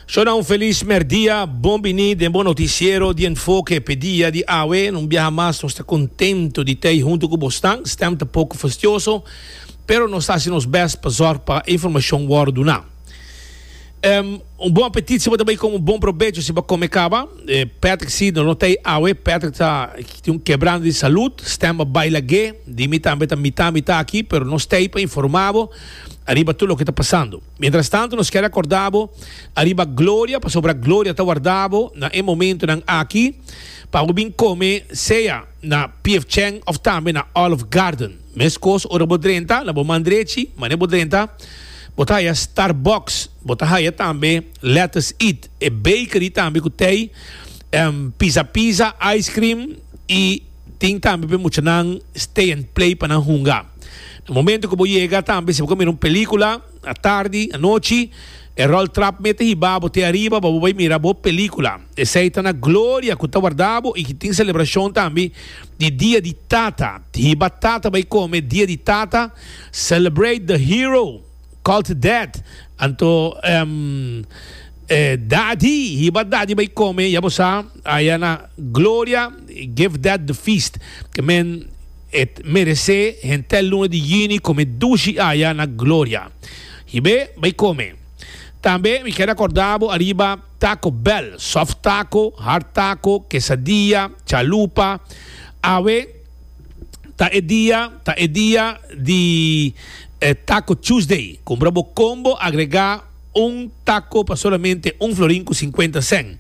Shona un felis merdia, bon bini den bo noticiero di Enfoke p'e dia di awe. Un biaha mas nos ta contento di t'ey hunto cu bosnan. Stem ta poco fastioso, pero nos ta haci nos best pa zorg pa informacion worde duna. Um bon apetit si bo ta bay come, un bon probecho si bo come caba. Patrick si nos no t'ey awe, Patrick ta tin un quebrando di salud. Stem a bay lag'e, di mi tambe ta mita mita aki, pero nos t'ey pa informa bo. ariba tur loke ta pasando. Mientras tanto nos kier acorda bo ariba gloria, pasobra gloria ta warda bo na e momentonan aki pa bo bin come sea na PF Chang of tambe na Olive Garden. Meskos ora bo drenta na bo man drechi, mane bo drenta, bo ta haya Starbucks, bo ta haya tambe Lettuce Eat, e bakery tambe cu tey pisa pisa, ice cream y. Tin tambe pa e muchanan stay and play pa nan hunga. Na momento ku bo yega tambe si bo ta mira un pelikula a tardi, anochi, e ròl trap mete hibá bo te ariba pa bo bai mira bo pelikula. Esei ta na gloria ku ta warda bo i ku tin selebrashon tambe di dia di tata. Hiba tata bai kome dia di tata, celebrate the hero. Cult dead. Anto e Dadi hiba Dadi bay come ya bo sa aya na Gloria give dead the feast ke men et merece hentel luna di juni come dushi aya na Gloria hibe bay come tambe mi keda corda bo ariba taco bell soft taco hard taco quesadilla chalupa awe Ta e dia ta e dia di e Taco Tuesday. Cumpra bo combo, agrega un taco pa solamente un florin cu cincuenta cent.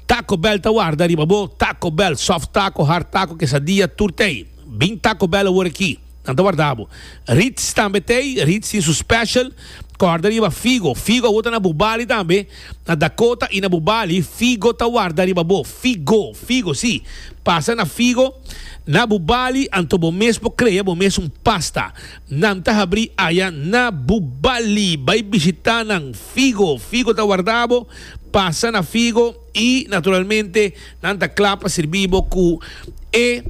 Taco Bell ta warda riba bo. Taco Bell, soft taco, hard taco, quesadilla, tur t'ey. Bin Taco Bell awor aki, nan ta warda bo. Ritz tambe t'ey, Ritz tin su special, corda riba figo. Figo awor ta na Bubali tambe, Na Dakota i na bo bali, figo ta warda riba bo. Figo, figo, sí. Pasa na figo. Na bo bali, anto bo mes por krea bo mes un pasta. Nan ta habrí aya na bo bali. Bai bishitá nan. Figo, figo ta warda bo. Pasa na figo i, naturalmente, nan ta kla pa sirbí bo ku e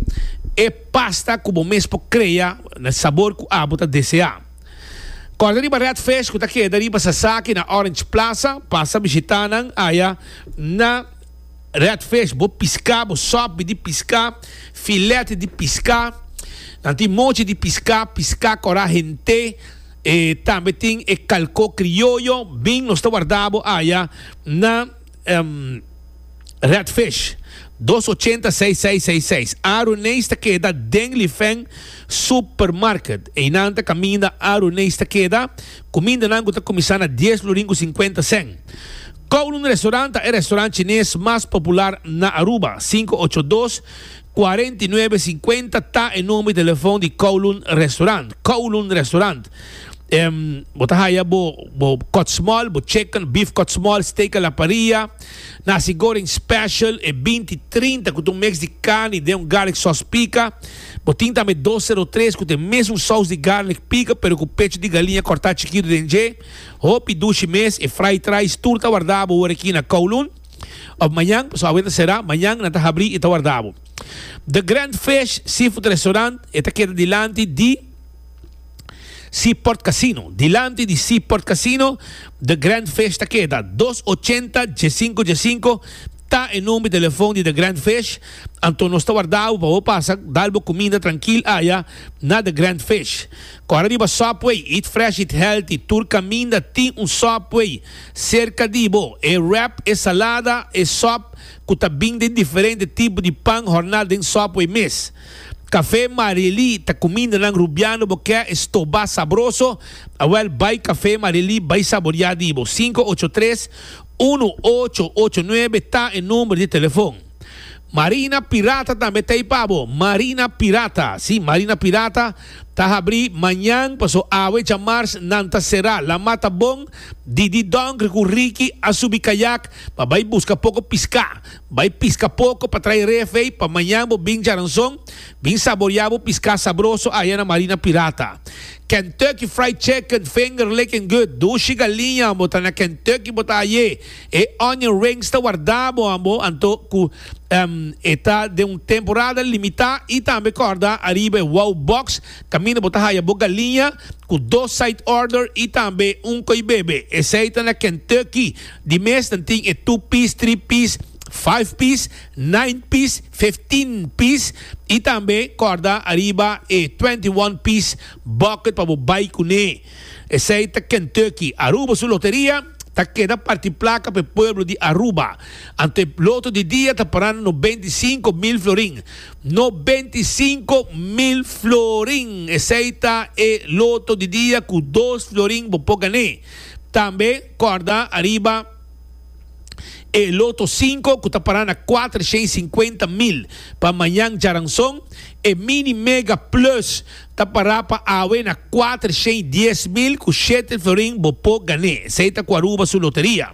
e pasta ku bo mes por krea, na sabor ku abo ta deseá. Corda riba Red Fish cu ta keda riba Sasaki na Orange Plaza, pasa bishita nan aya na Red Fish, bo pisca, bo sopi di pisca, filet di pisca, nan tin mochi di pisca, pisca cora hente, e tambe tin e calco crioyo, bin nos ta warda bo aya na. Redfish, dos ochenta seis seis seis seis, Aruneis ta keda den Lifeng Supermarket. Einan ta kaminda Aruneis ta keda. Kumindanan ku ta kuminsá na dies lorin ku sinkuenta sen. Kowloon Restaurant ta e restaurant chines mas popular na Aruba, sinku ocho dos, Cuarenta y nuebe cincuenta ta e number di telefon di Kowloon Restaurant. Kowloon Restaurant. Em, bo ta haya bo, bo kotsmol, bo chicken, beef kotsmol, steak a la parrilla, nasi goreng special, e binti trinta ku ta un mix di carni den un garlic sauce pica. Bo tin tambe dos zero tres ku ta e mesun saus di garlic pica pero ku pechu di galiña kortá chikitu den dje. Hopi dushi mes, e fried rice tur ta wardá bo ora aki na Kowloon. Of mañan, pasobra awe ta será, mañan nan ta habrí i ta warda bo. The Grand Fish Seafood Restaurant e ta keda dilanti di Seaport Casino. Dilanti di Seaport Casino, The Grand Fish ta keda. Dos ochenta djesinko djesinko ta e number di telefon di The Grand Fish. Anto nos ta warda bo pa bo pasa dal bo kuminda trankil aya na The Grand Fish. Kòrda riba Subway, Eat Fresh, Eat Healthy tur kaminda tin un Subway. Serka di bo, e wrap, e salada, e sòp ku ta bin den diferente tipo di pan horná den Subway mes. Kafé Marelí ta kuminda nan rubiano bo kè e stobá sabroso, awèl bai Kafé Marelí bai saboriá di bo. Sinku ocho tres, unu ocho ocho nuebe ta e number di telefon. Marina Pirata tambe ta ei pa bo. Marina Pirata, si, Marina Pirata ta habrí mañan, paso awe djamars nan ta será. Lamá ta bon, Didi Donkr cu Ricky a subi kayak pa bai busca poco piscá. Bai pisca poco pa trai ref ei pa mañan bo bin djaranzon, bin saborea bo piscá sabroso aya na Marina Pirata. Kentucky Fried Chicken, Finger Lickin' Good, Dushi Galiña, bo ta na Kentucky bo ta ayé. E onion rings ta wardá bo ambo anto ku e ta den un temporada limitá i tambe kòrda ariba e wow box kaminda bo ta haya bo galiña ku dos side order i tambe un koi bebe. Esei ta na Kentucky. Di mes nan tin e two piece, three piece, five piece, nine piece, fifteen piece i tambe kòrda ariba e twenty one piece bucket pa bo bai kuné. Esey ta Kentucky. Aruba su loteria ta keda parti placa pa e pueblo di Aruba. Anto e loto di dia ta parando no beinti i sinku mil florin. No beinti i sinku mil florin! Esey ta e loto di dia cu dos florin bo por gané. Tambe corda ariba e loto sinku cu ta para na cuater shen i sinkuenta mil. Pa mañan djaranzon e Mini Mega Plus Ta pará pa awe na kuater shei dies mil ku shete florin bo por gan'é, esei ta ku Aruba su loteria.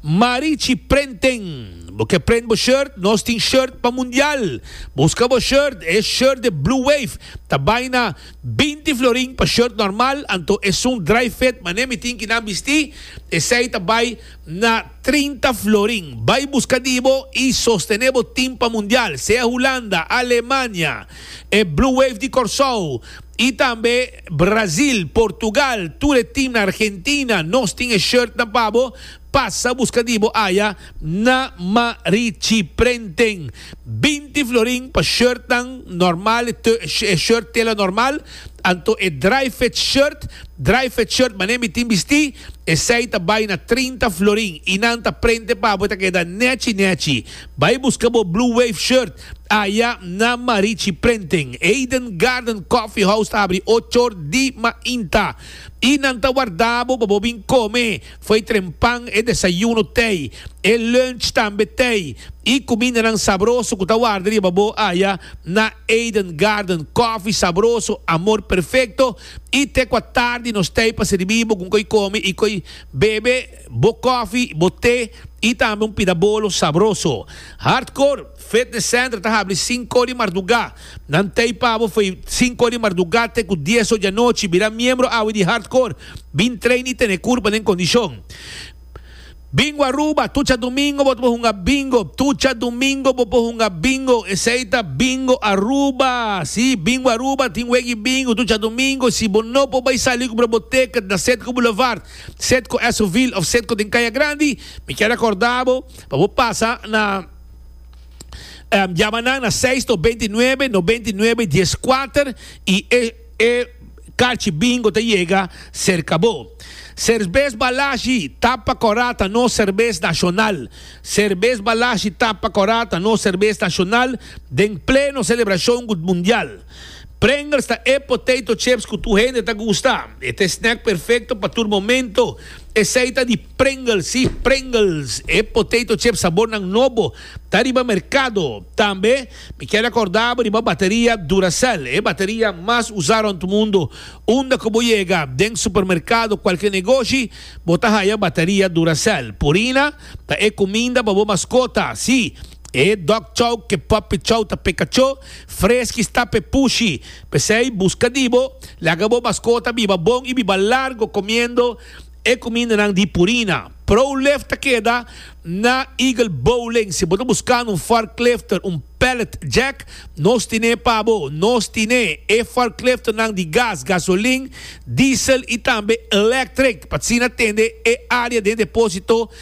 Marichi Prenten! Bo ke prent bo shirt? Nos tin shirt pa mundial! Buska bo shirt, e shirt de Blue Wave ta bai na binti florin pa shirt normal, anto esun dry fit manera mi tin ki nan bisti, esei ta bai na trinta florin. Bai buska di bo i sostené bo tin pa mundial, sea Hulanda, Alemania. e Blue Wave di Kòrsou i tambe Brazil, Portugal, tur e team na Argentina, nos tin e shirt nan pa bo, pasa buska di bo aya na Marichi Prenten. Binti florin pa shirt nan normal e tö e shirt tela normal, anto e dry fit shirt, dry fit shirt manera mi tin bistí, esei ta bai na trinta florin i nan ta prente pa bo e ta keda nèchi nèchi. Bai buska bo Blue Wave shirt. Aya na Marichi Prenten, Eden Garden Coffee House ta abri ochor di mainta y nan ta warda bo pa bo bin come foi tren pan, e desayuno tei, e lunch tambe tei y cumindanan sabroso cu ta warda riba bo aya na Eden Garden Coffee sabroso, amor perfecto y te cua tardi nos tei pa sirbi bo con coy come y coy bebe. bo kòfi, bo te i tambe un pida bolo sabroso. Hardcore Fitness Center ta habri sinko di mardugá. Nan tei pa bo fo'i sinko di mardugá te ku dies ocho di anochi. Bira miembro awe di Hardcore. Bin train i tene kurpa den kondishon. Bingo Aruba, Tucha Dumingo bo ta por hunga bingo. Tucha Dumingo bo por hunga bingo. Esei ta Bingo Aruba. Sí, Bingo Aruba tin wek di bingo. Tucha Dumingo, si bo no por bai sali ku broboteka na Setco Boulevard, Set ku Esonville of set ku den Kaya Grandi, mi ke rekorda bo pa bo pasa na jama nan na seis to beinti nuebe nobeinti nuebe dies kuater i e e karchi bingo ta yega serka bo. Serbes Balashi Tapa Kora ta nos serbes nashonal. Serbes Balashi Tapa Kora ta nos serbes nashonal den pleno selebrashon ku mundial. Pringles ta e potato chips cu tur hende ta gusta. E ta e snack perfecto pa tur momento. Esey ta di Pringles, si, Pringles, e potato chips sabornan nobo ta riba mercado. Tambe mi kier acordabo riba bateria Duracell, e bateria mas usa rond mundo. Unda cu bo yega, den supermercado, cualkier negoshi, bo ta haya bateria Duracell. Purina ta e cuminda pa bo mascota, si, E dog chow ke puppy chow ta pe kachó freski sta pe pushi. P'esei buska di bo, laga bo maskota biba bon i biba largo komiendo e kumindanan di Purina. Prowlift ta keda na Eagle Bowling. Si bo ta buskando un forklifter, un pallet jack, nos tin'é pa bo. Nos tin'é e forklifternan di gas, gasolin, diesel i tambe elektrik, p'asina tende e área den deposito.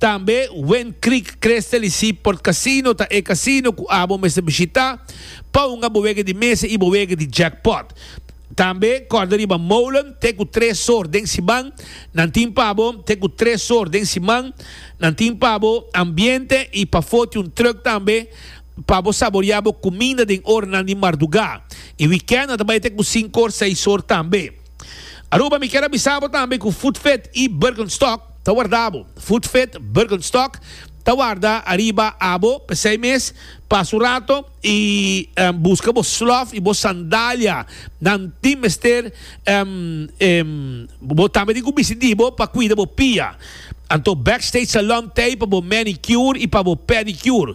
Tambe Wend Creek Creste li si Port Casino ta e casino cu abo mester bishita pa hunga bo wega di mesa y bo wega di jackpot. Tambe corda riba molen te cu tres sor den siman nan tin pa bo te cu tres sor den siman nan tin pa bo ambiente y pafo tin un truck tambe pa bo saborea bo cuminda den oranan di marduga y weekend nan ta bay te cu cinco or seis or tambe. Aruba mi kier a bisa bo tambe ku Food Fit i Birkenstock ta warda bo. Food Fit Birkenstock ta warda ariba abo p'esei mes. Pasa un rato i buska bo slof i bo sandalia. Nan tin mester bo tambe tin ku bisti di bo pa kuida bo pia. Anto Backstage Salon t'ei pa bo manicure i pa bo pedicure.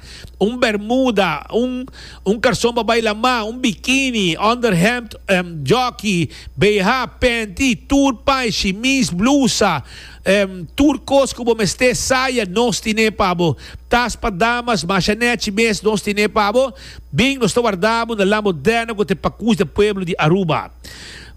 Un bermuda, un un karson pa bai lamá, un bikini, underhemd, em, joki, BH, penti, tur pai, shimis, blusa, em, tur kos ku bo mester, saya, nos tine pa bo. Tas pa damas, masha nechi mes nos tine pa bo. Bin, nos ta wardá bo na La Moderna ku ta e Pakus di e Pueblo di Aruba.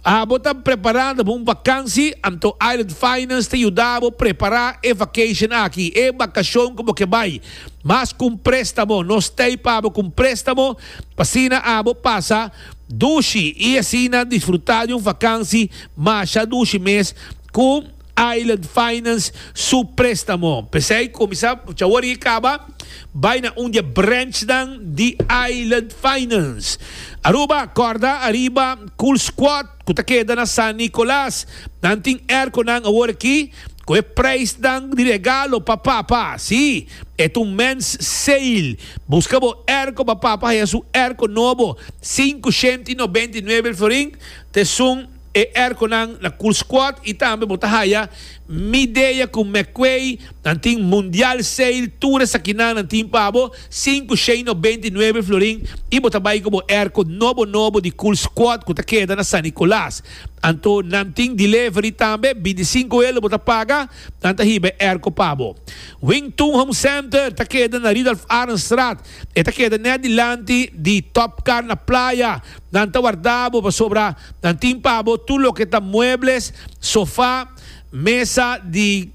Abo ta preparando pa un vakansi? Anto Island Finance ta yuda bo prepara e vacation aki, e bakashon ku bo ke bai. Mas ku un préstamo, nos ta ei pa bo ku un préstamo pa asina abo pasa dushi i asina disfrutá di un vakansi masha dushi mes ku. Island Finance su préstamo. P'esei kuminsá awor i kaba, bai na un di e branchnan di Island Finance, Aruba. Kòrda ariba Cool Squad ku ta keda na San Nicolas, nan tin airconan awor aki ku e preisnan di regalo pa papa. Sí, e ta un men's sale. Buska bo airco pa papa haya su airco nobo, sinku shenti nobenta i nuebe el florin t'esun. E erconan na Cool Squad y tambe bo ta haya Midea cu McQuay, nan tin Mundial Sale, tur esakinan nan tin pa bo, cinco shei no beinti nuebe florin y bo ta bay cu bo erco nobo nobo di Cool Squad cu ta keda na San Nicolas. Anto nan tin delivery tambe, binti cinco elo bo ta paga, nan ta hiba e erco pa bo. Wing Tun Home Center ta keda na Ridulf Arendstraat, E ta keda net dilanti di Top Car na Playa. Nan ta warda bo pasobra nan tin pa bo tur loke ta muebles, sofa, mesa di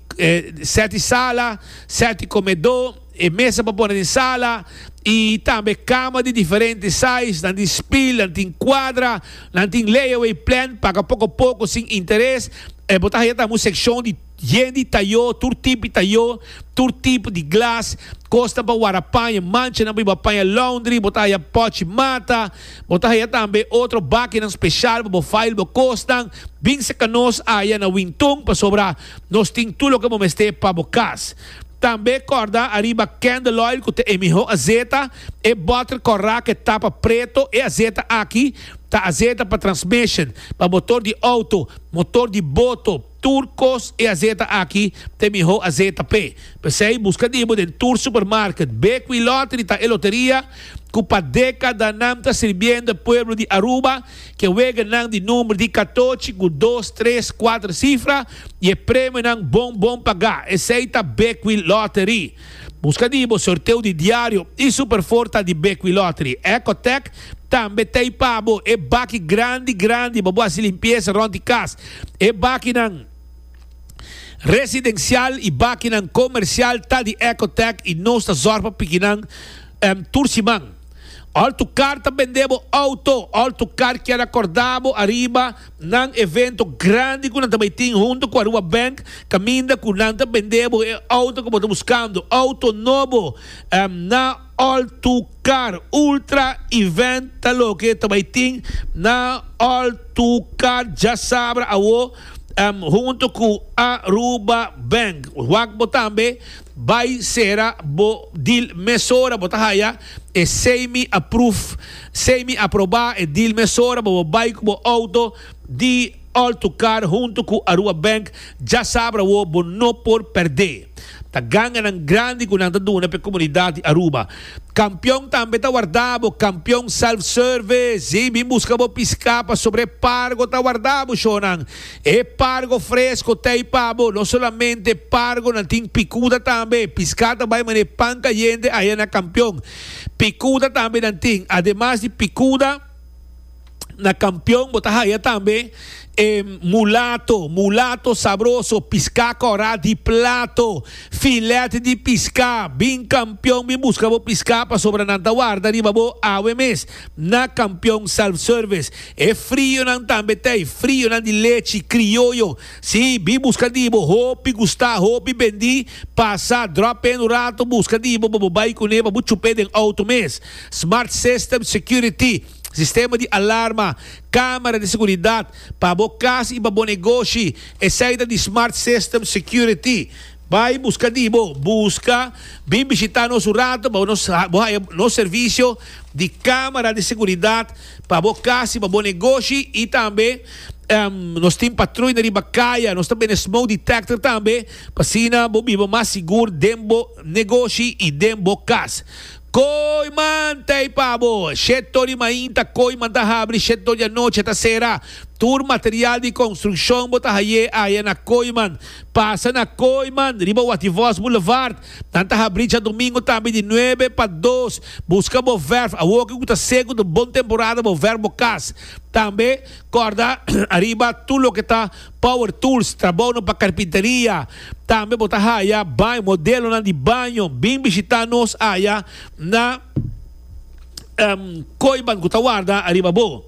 set di sala, set di komedo, e mesa pa pone den sala i tambe kama di diferente size. Nan tin spil, nan tin kuadra, nan tin layaway plan, paga poko poko sin interes. Bo ta haya tambe un sekshon di. Yen di tayo, tur tipi tayo, tur tipo di glas, cosnan pa wara paña, manchanan pa i bo a paña laundry, bo ta haya pochi mata, bo ta haya tambe otro bakinan special pa bo file bo cosnan, bin seca nos aya na Wintun pasobra nos tin tur loke bo mester pa bo cas. Tambe corda ariba candle oil cu ta e miho azeta, e botter corra cu e tapa preto, e azeta aki ta azeta pa transmission, pa motor di auto, motor di boto, Tur kos e azeta aki ta e miho azeta p'e. P'esei, buska di bo den tur supermarket. Bequi Lottery ta e loteria cu pa decadanan ta sirbiendo e pueblo di Aruba, cu e weganan di number di catochi cu dos, tres, cuater cifra y e premionan bon bon paga. Esei ta Bequi Lottery. Buska di bo sorteo di diario y Superfour ta di Bekwui Lottery. Ecotec tambe ta y pa bo e baki grandi grandi pa bo haci limpieza rond di cas. E bakinan residencial y bakinan comercial ta di Ecotec y nos ta zorg pa pikinan tur siman. Al tu car ta bende bo auto, al tu car kier a corda bo ariba. Nan evento grandi cu nan ta bay tin hunto cu Aruba Bank caminda cu nan ta bende bo e auto cu bo ta buscando. Auto nobo na All Too Car Ultra Event ta loke ta bay tin na All Too Car Djasabra awo hunto cu Aruba Bank. Wak bo tambe Bai sera bo dil mesora bo ta haya e semi approve semi aproba e dil mesora bo bo bai ku bo outo di all to car hunto ku Aruba Bank dja sabra wo bo no por perde ta ganganan grandi ku nan ta duna p'e komunidat di Aruba kampion tambe ta warda bo kampion self service bin buska bo piska pasobra e pargo ta warda bo shornan. E pargo fresco ta ei pa bo. No solamente pargonan tin picuda tambe. Piscá ta bai manera pan cayente aya na Campeón. Picuda tambe nan tin. Ademas di picuda, na Campeón bo ta haya tambe e mulato. Mulato sabroso, piscá corá di plato, filet di piscá. Bin Campeón bin busca bo piscá pasobra nan ta warda riba bo awe mes. Na Kampion Self Service e frionan tambe ta e frionan di lechi krioyo. Si, bin buska di bo, hopi gusta, hopi bendi, pasa, drop in un ratu buska di bo pa bo bai kuné pa bo chup'é den outo mes. Smart System Security, sistema di alarma, kamera di seguridat, pa bo kas i pa bo negoshi, esei ta di Smart System Security. Bai buska di bo buska. Bin bishita nos un rato pa nos bo haya nos servisio di camera di seguridad pa bo cas y pa bo negoshi y tambe nos tin patruina riba caya nos ta bende smoke detector tambe pa asina bo biba mas sigur den bo negoshi y den bo cas. Kooi man ta ei pa bo. Shed to di mainta kooi man ta habri shed to di anochi ta sera. Tur material di construccion bo ta haye aya na kooi man. Pasa na kooi man riba Wativos Boulevard. Nan ta habri dja domingo tambe di nuebe pa dos. Busca bo verf awoki cu ta seco ta bon temporada bo verf bo cas. Tambe corda ariba tur loke ta. Power Tools, Trabounan pa Karpinteria, Tambe bo ta haya baño, modelonan di baño, bin bishitá nos aya na koiban ku ta warda ariba bo.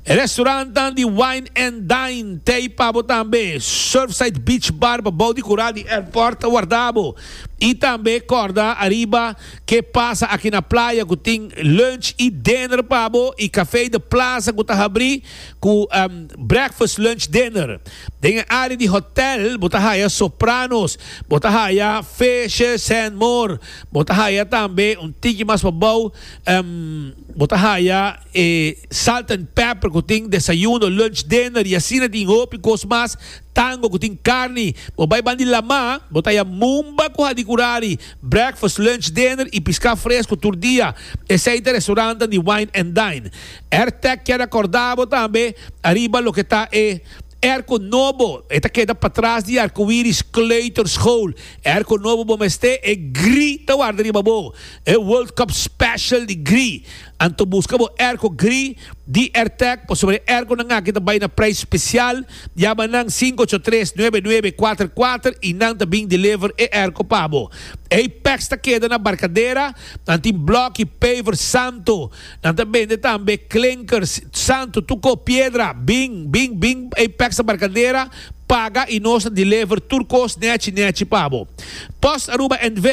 Restaurantan di Wine and Dine, Tei pa bo tambe. Surfside Beach Bar pa bou di kura di airport ta warda bo. I tambe kòrda ariba ke pasa aki na playa ku tin lunch i dinner pa bo i Café de Plaza ku ta habrí. Ku breakfast, lunch, dinner. Den e área di hotèl bo ta haya sopranos, bo ta haya fishes and more. Bo ta haya tambe un tiki mas pabou bo ta haya e salt and pepper ku tin desayuno, lunch, dinner i asina tin hopi kos mas. Tango ku tin karni. Bo bai ban di Lamá bo ta haya mumba ku hadi kurari, breakfast, lunch, dinner i piská fresku tur dia. Esei ta restaurantnan di wine and dine. Airtag kier a corda bo tambe ariba loke ta e airco nobo, e ta keda patras di Arcoiris Kleuterschool. E airco nobo bo mester e gri ta warda riba bo, e World Cup Special di gri. Anto busca bo airco gri di Airtag pasobra e airconan aki ta bay na prijs special. Yama nan cinco ocho tres nuebe nuebe cuater cuater y nan ta bin deliver e airco pa bo. Apex ta keda na Barcadera, nan tin bloki paver Santo. Nan ta bende tambe klinkers, santu, tuko, piedra, bin, bin, bin, ei peksa barkadera, paga i nos ta deliver tur kos nechi, nechi pa bo. Post Aruba NV.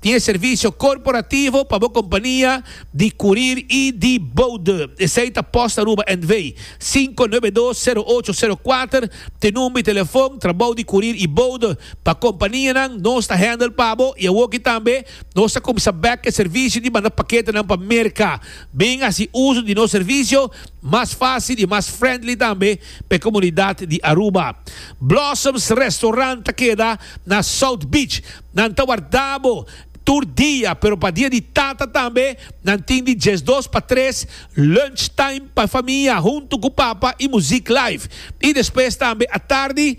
tin e servisio korporativo pa bo kompania di kurir i di boude. Esei ta Post Aruba NV. Sinku nuebe dos, sero ocho, sero kuater te number di telefon, trabou di kurir i boude pa kompanianan, nos ta handle pa bo i awoki tambe Nos ta cuminsa bek e servicio di manda paketenan pa Merca. Bin haci uzo di nos servicio mas facil y mas friendly tambe pa e comunidad di Aruba. Blossoms Restaurant ta keda na South Beach. Nan ta warda bo tur dia, pero pa dia di tata tambe nan tin di diesdos pa tres lunch time pa e famia hunto cu papa y muziek live. Y despues tambe atardi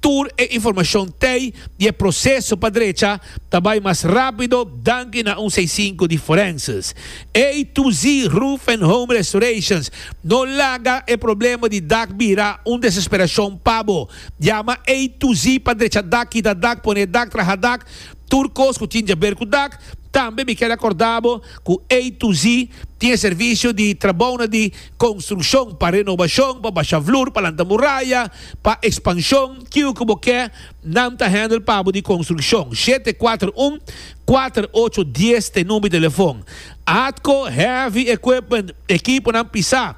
Tur e informashon tei di e proseso pa drecha ta bai mas rapido danki na un seisinku di forenses. A to Z Roof and Home Restorations no laga e problema di dak bira un desesperashon pa bo. Yama A to Z pa drecha dak, kita dak, pone dak, traha dak, tur kos ku tin djaber ku dak. Tambe mi kere akorda bo ku A to Z tin e servisio di trabounan di. konstrukshon, pa renobashon, pa basha flur, pa lanta muraya, pa ekspanshon, kiu ku bo ke, nan ta hèndel pa bo di konstrukshon. Shete kuater un, kuater ocho dies t'e number di telefon. Atco Heavy Equipment, ekiponan pisá,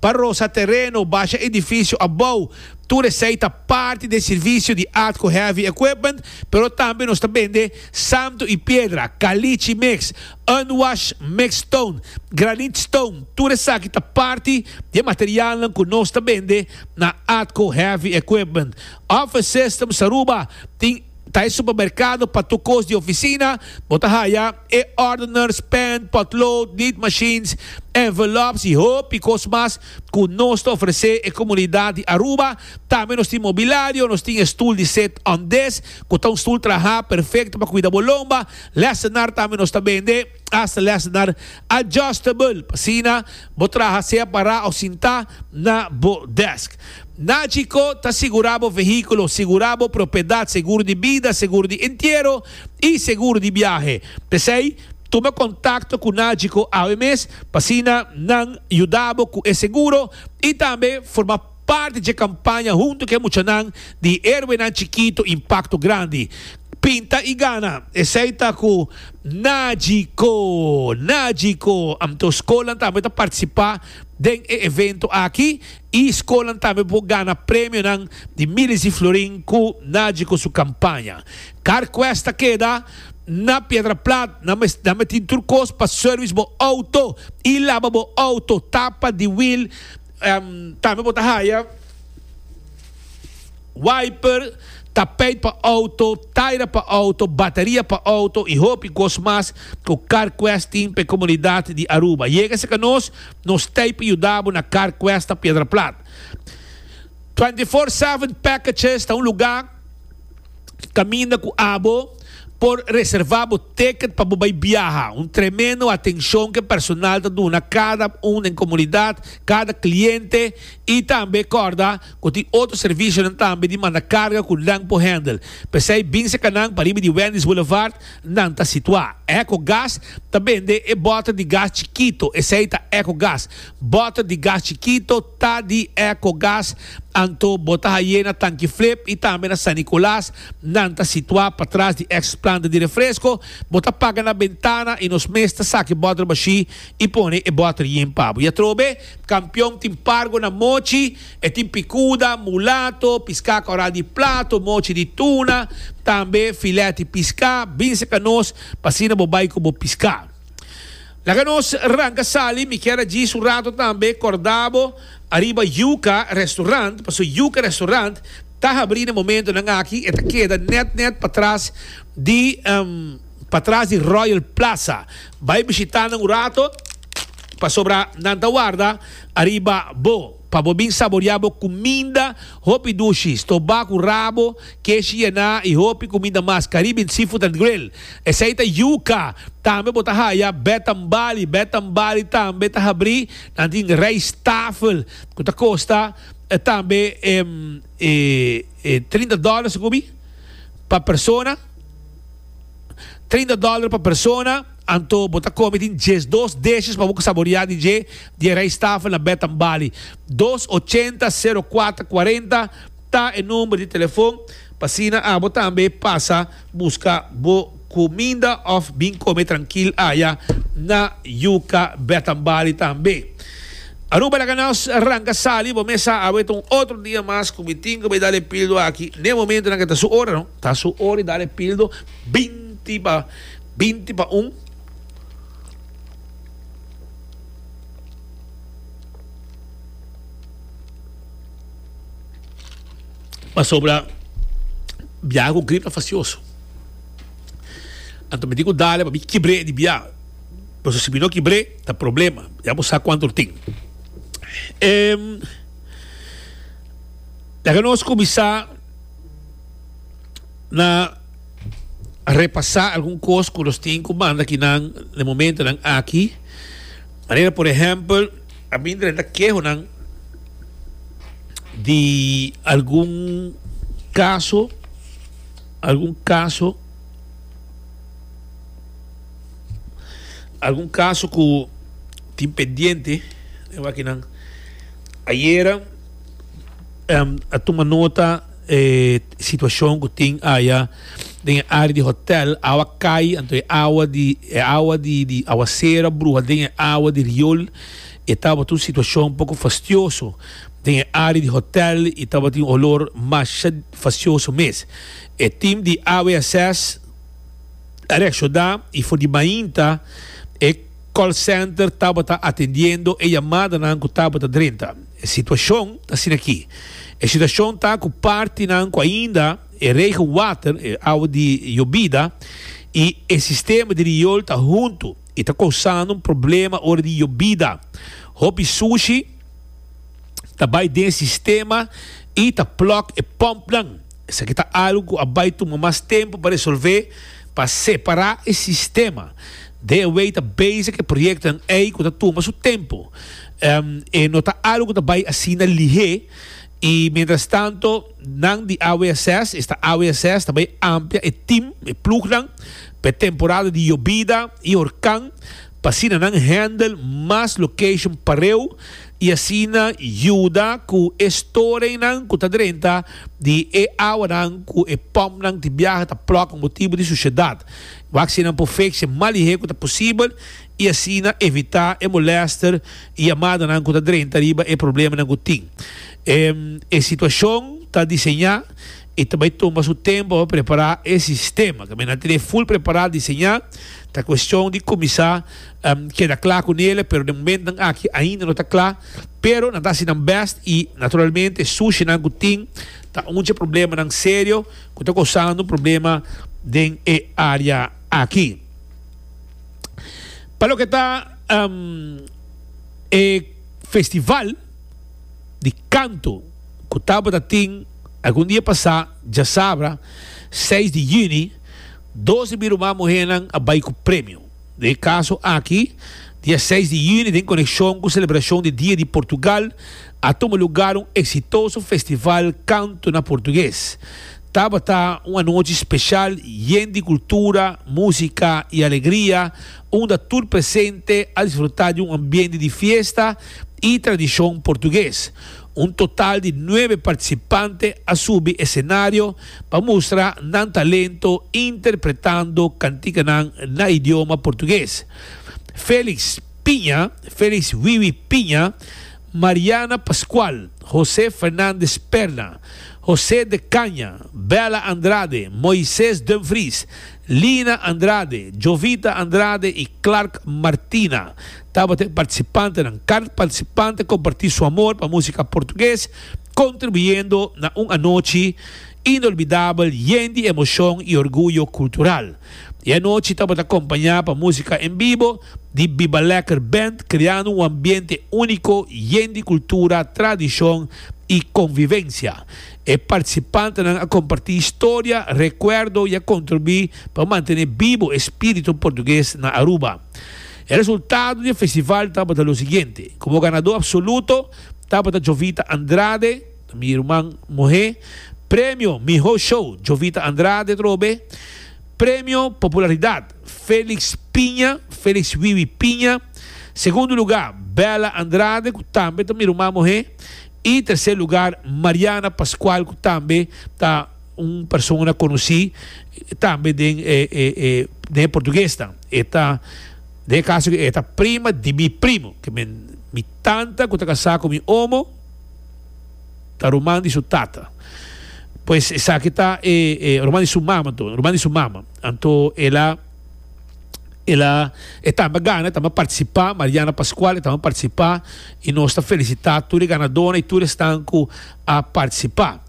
pa rosa tereno, basha edifisio abou, tur esei ta parti d'e sirvisio di Atco Heavy Equipment, pero tambe nos ta bende samtu i piedra, kalichi mix. Unwash, mix stone, granite stone, tur esaki ta parti di e materialnan ku nos ta bende na Atco Heavy Equipment. Office Systems Aruba tin ta e supermerkado pa tur kos di ofisina, bo ta haya e ordeners, pen, potlood, nit machines, envelops i hopi kos mas ku nos ta ofresé e komunidat di Aruba. Tambe nos tin mobilario, nos tin e stul di sit-on desk ku ta un stul trahá perfekto pa kuida bo lomba. Lessenar tambe nos ta bende asta lessenar adjustable pa asina bo traha sea pará o sintá na bo desk. Nachico ta sigurá bo vehículo, sigurá bo propiedad, seguro di bida, seguro di entiero i seguro di biahe. P'esei, tuma contacto cu Nachico awe mes pa asina nan yuda bo cu e seguro i tambe forma. Parti dje kampaña huntu ku e muchanan di Héroenan Chikitu Impakto Grandi, Pinta i Gana. Esei ta ku Najiko, Najiko. Anto skolnan tambe ta partisipá den e evento aki i skolnan tambe por gana premionan di milis di florin ku Najiko su kampaña. Carquest ta keda na Piedraplat. Nan mes nan mes tin tur kos pa sèrvis bo outo i laba bo outo, tapa di wil. Tambe bo ta haya wiper, tapijt pa auto, taira pa auto, bateria pa auto y hopi cos mas cu Car Quest tin p'e comunidad di Aruba. Yega cerca nos, nos t'ey pa yuda bo na Car Quest ta Piedra Plat. Twenty Four Seven Packages ta un lugar. caminda cu abo por reserva bo ticket pa bo bay biaha. Un tremendo atencion cu e personal ta duna cada un den comunidad, cada cliente y tambe corda cu tin otro servicionan tambe di manda carga cu nan por handle. P'esey bin seca nan pariba di Wendy's Boulevard, nan ta situa. Echo Gas ta bende e boter di gas chikito, esey ta Echo Gas, boter di gas chikito, ta di Ecogas, anto bo ta haye na Tanki Flip y tambe na San Nicolas, nan ta situa patras di ex planta di refresco, bo ta paga na bentana y nos mes ta saki boter bashi y pone e boter yin pa bo. Y atrobe, Campeon tin pargo na mochi, e tin picuda, mulato, pisca coral di plato, mochi di tuna, tambe filet di pisca, binse ca nos pa asina bo bay cu bo pisca. Laga nos ranca sali, mi kier a djis un rato tambe corda bo ariba Yuca Restaurant, pasobra Yuca Restaurant ta habri na momentonan aki, e ta keda net net patras di patras di Royal Plaza, bay bishita nan un rato pasobra nan ta warda ariba bo. Pa bo bin saboriá bo kuminda hopi dushi, stobá ku rabo, keshi yená i hopi kuminda mas, Caribbean seafood and grill. Esei ta yuka. Tambe bo ta haya bed and bali. Bed and bali tambe ta habrí. Nan tin rijsttafel ku ta kosta tambe trinta dòler, sekubi? Pa persona. Trinta dòler pa persona. Anto bo ta kome tin djes dos deshes pa bo saboreá di dje di e rijsttafel na Bed and Bali. Dos ochenta sero kuater kuarenta ta e number di telefon pa asina abo tambe pasa buska bo kuminda òf bin kome trankil aya na Yuca Bed and Bali tambe. Aruba laga nos ranka sali bo mes sa abo e ta un otro dia mas ku mi tin ku bai dal e pildo aki. N'e momentonan ku e ta su ora no. Ta su ora di dal e pildo binti pa. Binti pa un. Pasobra biaha ku grip ta fasioso. Anto mi di ku dale pa mi kibr'é di biaha. Pasobra si mi no kibr'é ta problema, ya bo sa kuantu tin. Laga nos kuminsá na. repasá algun kos ku nos tin ku manda ki nan den momentonan aki. Manera por ehèmpel, a bin drenta kehonan di algun kaso, algun kaso, algun kaso ku tin pendiente den wakinan. Ayera a tuma nota. E situacion cu tin aya den e area di hotel, awa cay, anto e awa di e awa di di awacer a bruha den e awa di riol, e tabata un situacion poco fastioso den e area di hotel y tabatin un olor masha fastioso mes. E team di AWSS a reacciona y for di mainta e call center tabata atendiendo e yamadanan cu tabata drenta. E situacion ta asina aki. E situacion ta cu partinan cu ainda e regenwater, e awa di yobida, y e sistema di riol ta hunto y ta causando un problema ora di yobida. Hopi sushi ta bay den sistema y ta plug e pumpnan. Esaki ta algu ku a bai tuma mas tempu pa resolvé, pa separá e sistema. DeWe ta bezi ku e proyektonan ei ku ta tuma su tempu. E no ta algu ku ta bai asina lihé i mientrastantu nan di AWSS, esta AWSS, ta bai amplia e tim, e plugnan, pa e temporada di yobida i horkan pa asina nan handle mas location pareu y asina yuda cu e storenan cu ta drenta di e awanan cu e pumpnan tin biaha ta plug motibu di suciedad. Wak si nan por fix e malihe cu ta posibel y asina evita e molester y yamadanan cu ta drenta riba e problemanan cu tin. E situacion ta diseña. E ta bai tuma su tempu pa prepará e sistema. Kaminda nan tene ful prepará, diseñá, ta kuestion di kuminsá keda kla ku nele, pero den momentunan aki ainda no ta kla. Pero nan ta hasi nan bèst i naturalmente sushinan ku tin ta un dje problemanan serio ku ta kosando problema den e área aki. Pa loke ta e festival. di kantu ku tabata tin algun dia pasá djasabra, seis di yüni, dos di mi ruman muhénan a bai ku premio. Den e kaso aki, dia seis di yüni den konekshon ku selebrashon di Dia di Portugal a tuma lugar un eksitoso festival kantu na portuges. Tabata un anochi speshal yen di kultura, músika i alegria. unda tur presente a disfrutá di un ambiente di fiesta i tradishon portugues. Un total di nuebe partisipante a subi esenario pa mustra nan talento interpretando kantikanan na idioma portugues. Felix Piña, Felix Wiwi Piña, Mariana Pascual, José Fernandez Perna, José de Caña, Bella Andrade, Moises Dumfries, Lina Andrade, Jovita Andrade y Clark Martina tabata e participantenan. Car participante comparti su amor pa musica Portugues, contribuyendo na un anochi inolbidabel yen di emocion y orguyo cultural. E anochi tabata acompaña pa musica en bibo di Biba Lekker Band, creando un ambiente unico yen di cultura, tradicion y convivencia. E participantenan a comparti historia, recuerdo y a contribui pa mantene bibo e spirito Portugues na Aruba. E resultado di e festival tabata lo siguiente, como ganador absoluto tabata Jovita Andrade, ta mi ruman muhe, Premio Miho Show, Jovita Andrade Trobe, Premio Popularidad, Felix Piña, Felix Wiwi Piña, Segundo Lugar, Bella Andrade, cu tambe ta mi ruman muhe, Y tercer lugar Mariana Pascual cu tambe ta un persona conoci tambe den e e e den e portuguesnan e ta den e caso aki e ta prima di mi primo ke men mi tanta cu ta casa cu mi omo ta ruman di su tata pues esaki ta e e ruman di su mama anto ruman di su mama anto ela el a e tamba gana e tamba participa Mariana Pascual e tamba participa y nos ta felicita tur e ganadona y tur esnan cu a participa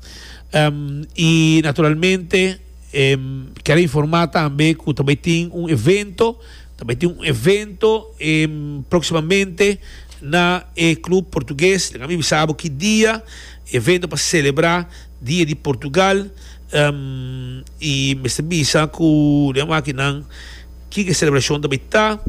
um y naturalmente um quiero informa tambe cu ta bay tin un evento ta bay tin un evento um proximamente na e club portugues dega mi bisa bo ki dia evento pa celebra Dia di Portugal i mester bisa ku den wakinan kiko e selebrashon ta bai ta.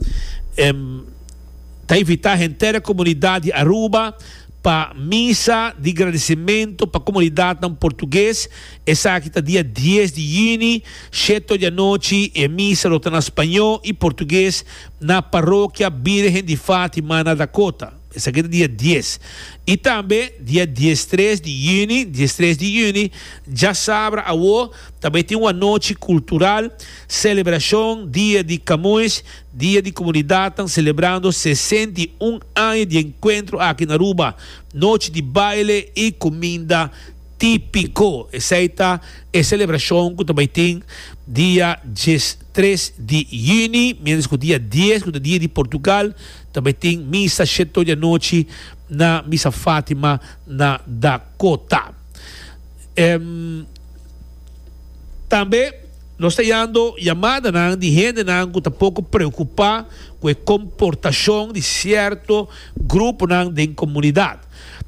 Ta invitá henter e komunidat di Aruba pa misa di gradisimentu pa komunidatnan portuges. Esaki ta dia dies di yüni sheto di anochi. E misa lo ta na spañó i portuges na Parokia Bírgen di Fátima na Dakota. Esaki ta dia dies. I tambe dia diestres di yüni, diestres di yüni, djasabra awo, ta bai tin un anochi kultural, selebrashon, dia di Kamuis, dia di komunidatnan selebrando sesenta i un aña di enkuentro aki na Aruba, nochi di baile i kuminda típiko. Esei ta e selebrashon ku ta bai tin dia diestres di yüni, miéntras ku dia dies, ku ta dia di Portugal, Tambe tin misa shetto di anochi na Misa Fatima na Dakota. Em tambe nos ta yando yamadanan di hendenan ku ta poko preokupá ku e komportashon di sierto gruponan den komunidat.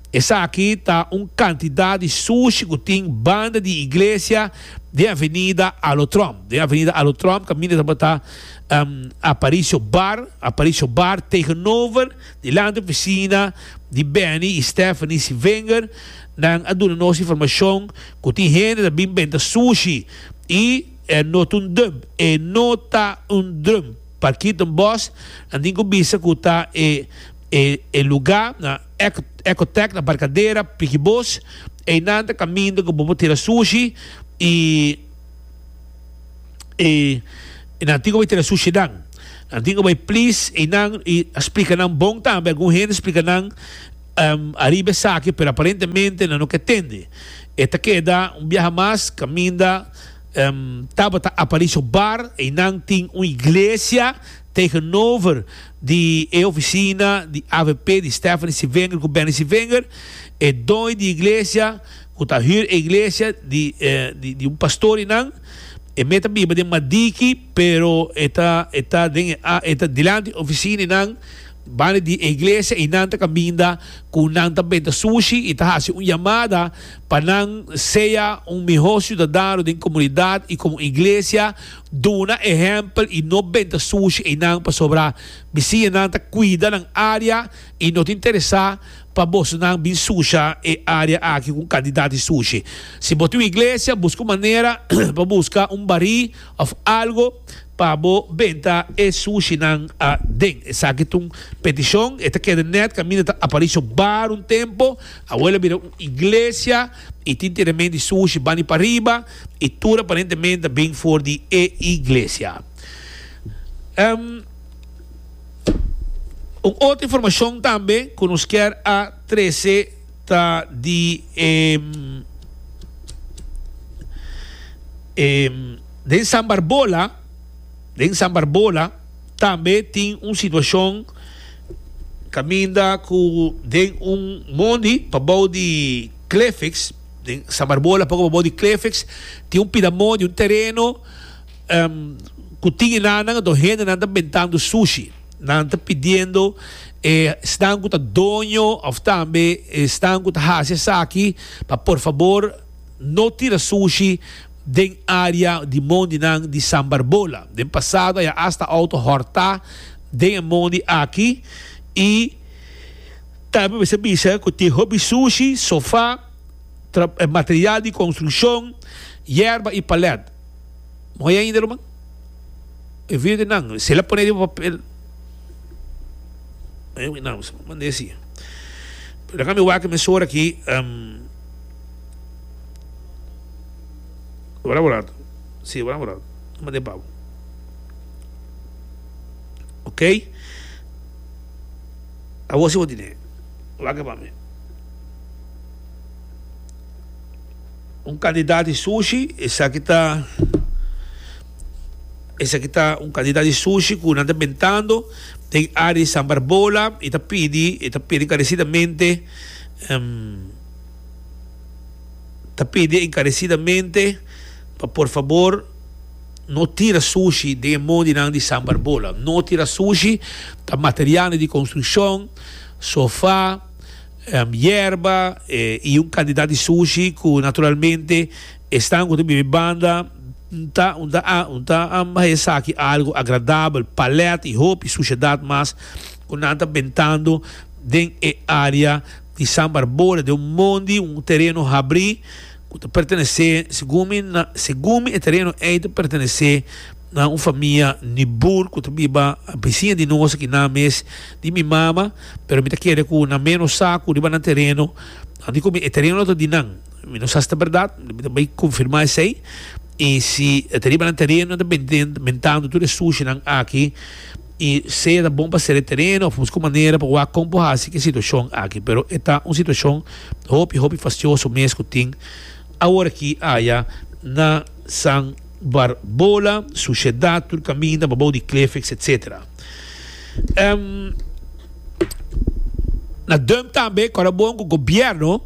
Esaki ta un kantidat di sushi ku tin banda di iglesia den Avenida Alotrump. Den Avenida Alotrump kaminda tabata. Um Aparicio Bar Aparicio Bar tegenover di lanta oficina di Benny y Stephanie Sievinger nan a duna nos informacion cu tin hende ta bin benta sushi y e no ta un drum e no ta un drum pa Kirton Bosch nan tin cu bisa cu ta e e e luga na Eco Ecotech na Barcadera Pikiboos eynan ta caminda cu bo por tira sushi y e nan tin ku bai tere sushidan. Nan tin ku bai plis einan i a splika nan bon tambe. Algun hende splika nan ariba esaki pero aparentemente nan no ke tende. E ta keda un biaha mas kaminda Tabata Aparicio Bar. Einan tin un iglesia tegenover di e ofisina di avp di Stephanie Civinger ku Benny Civinger. E doi di iglesia. Cu ta huur e iglesia di di un pastor y nan. E me ta biba den Madiki pero e ta e ta den e e ta dilanti e oficina y nan banda di e iglesia y nan ta caminda cu nan ta benta sushi y ta haci un yamada pa nan sea un miho ciudadano den comunidad y como iglesia duna ehempel y no benta sushi ey nan pasobra mi siña nan ta cuida nan area y no ta interesa pa bosonan bin susha e área aki ku un kantidat di sushi. Si bo tin un iglesia, buska un manera pa buska un barí òf algu pa bo benta e sushinan aden. Esaki ta un petishon. E ta keda nèt kaminda ta aparí so baro un tempu. Awor a bira un iglesia i tin tiramento di sushi bani pariba i tur aparentemente a bin for di e iglesia. Un otro informacion tambe cu nos kier a trece ta di e den San Barbola, den San Barbola tambe tin un situacion caminda cu den un mondi pabao di Clefix, den San Barbola poco pabao di Clefix tin un pida mondi, un tereno. Cu tin e nananan a do hende nan ta bentando sushi. Nan ta pidiendo e esnan cu ta doño of tambe e esnan cu ta haci esaki pa por fabor no tira sushi den area di mondi nan di San Barbola. Den pasado a ya hasta auto horta den e mondi aki y tambe mester a bisa cu tin hopi sushi, sofa, material di construccion, yerba y palet. Mooi ainda, ruman. E video di nan, si el a pone riba papel. Mooi wi nan, so manda e hasi. Pero laga mi wak mes ora aki. Um, ora bo rato. Si, ora bo rato. Nan manda e babo. Ok? Awor si bo tine. Wak pa mi. Un cantidad di sushi, esaki ta esaki ta un cantidad di sushi cu nan ta bentando den area di San Barbola y ta pidi y ta pidi encarecidamente ta pidi encarecidamente pa por fabor no tira sushi den e mon di nan di San Barbola no tira sushi ta material nan di construccion sofa yerba y un cantidad di sushi cu naturalmente e stan cu ta biba e banda ta ta bay esaki algo agradabel, palet y hopi suciedad mas cu nan ta bentando den e area di San Barbora den un mondi un tereno habri. ku ta pertenesé, segun mi, na segun mi e tereno ei ta pertenesé na un famia nibur ku ta biba bisiña di nos aki nan mes di mi mama pero mi ta kere ku nan mes no sa ku riba nan tereno di komi e tereno ta di nan mi no sa si ta bèrdat mi ta bai konfirmá esei i si ta riba nan tereno nan ta bentando tur e sushinan aki. I sea ta bon pa sede tereno of busca un manera pa wak con por haci cu e situacion aki. Pero e ta un situacion hopi, hopi fastioso mes cu tin awor aki aya na San Barbola, suciedad tur caminda babao di cliff, etc. Ehm, na Dump tambe, ora bon cu gobierno,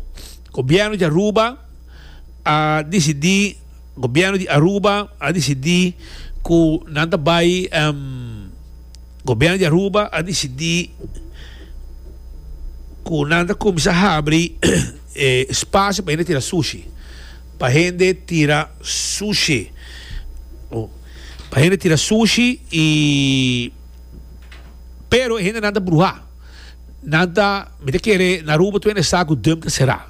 gobierno di Aruba a dicidi Gobierno di Aruba a disidí ku nan ta bai Gobierno di Aruba a disidí ku nan ta kuminsá habri e spasio pa hende tira sushi pa hende tira sushi pa hende tira sushi i pero e hende nan ta bruhá nan ta mi ta kere na Aruba tu hende sa ku dum ta será.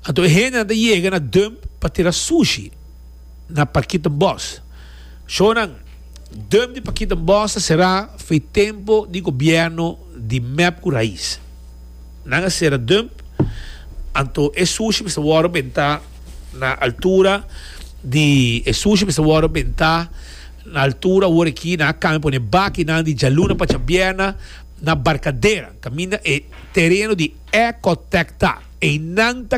Anto e hende nan ta yega na Dump pa tira sushi na Pakiettenbos. Shownan Dump di Pakiettenbos ta será fo'i tempo di gobièrnu di mep ku rais. Nan a sera Dump, anto e sushi mester wòrdu bentá na altura di e sushi mester wòrdu bentá na altura wor aki nan a kambia pone bakinan di djaluna pa djabièrna. Na Barcadera, caminda e tereno di Ecotec ta. Einan ta